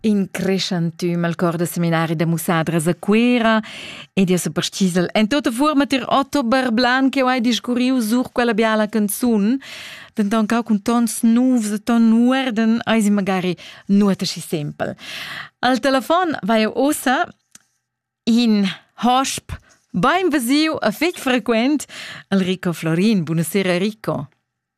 In creschantüm al cor da seminari da mussadras a Cuera ed io so parchisel en tota fuorma ter Otto Barblan che ho hai discurriu sur quella biala canzun, denton cau cun tons novs e ton uorden eisi magari nuota schi sempel. Al telefon vai eu ossa in hosp bain vesiu a fetg frequent al Rico Florin. Buonasera Rico.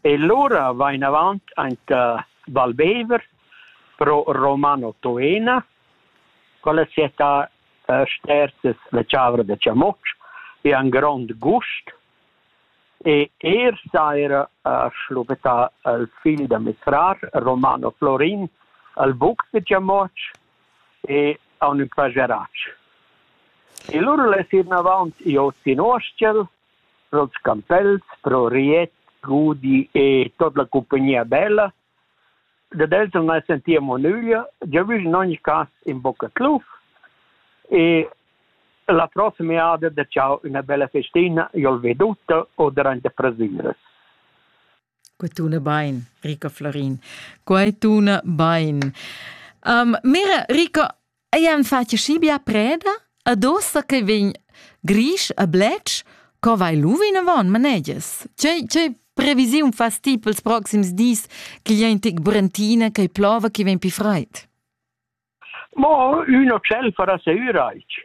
E lura va inavant aint Val Bever pro Romano Toena con la cietà Sterzes la Chavra da Chamoç. E han grond gust e er saira schluppetà il figl da mes frar Romano Florin al buc da Chamoç e haun ün pajarach. E lura les ir inavant i hoz in Uorschel pro'ls campels, pro Riet, Gudi e tot la cumpagnia bella. Dad els non as sentìa nüglia. Giavüsch in ogni cas in bocca cluf e la prossima jada da ciao üna bella festina, jol ve tutta o durante prasüras. Quai tuna bain, Rico Florin. Quai tuna bain. Um, Mira, Rico, Ei han fatg schi bia preda ad ossa che vegn grisch e bletsch, co vai lu vinavon, manegias? Tgei, tgei previsiun fas ti pels proxims dis ch'igl è in tic burentina che plova che vegn pli fraid? Mo üna tschelfa da seüraich.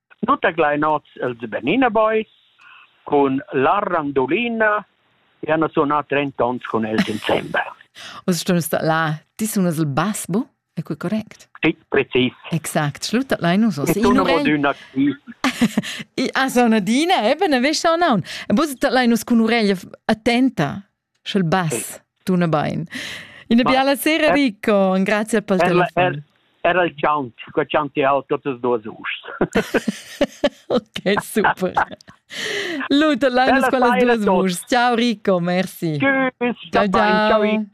Tut gl'ein oz els Bernina Boys cun la Randolina e han sunà 30 onns cun els insembel. Oz stumus dat là, ti sunas il bass, bu? È quei correct? Sì, precis. Exact, schluttat lai nus oss. E tu non oduna ti. I a so una dina, eben, avescia un aun. E bus dat lai nus cun ureglia attenta Sch'el bass, tuna bain. Ina biala sera, Rico, und grazie per il telefon. Era il Count, che Count ha tutte e due us. ok, super. Luta, là in scuola due us. Ciao Rico, merci. Tschüss. Ciao, ciao. ciao.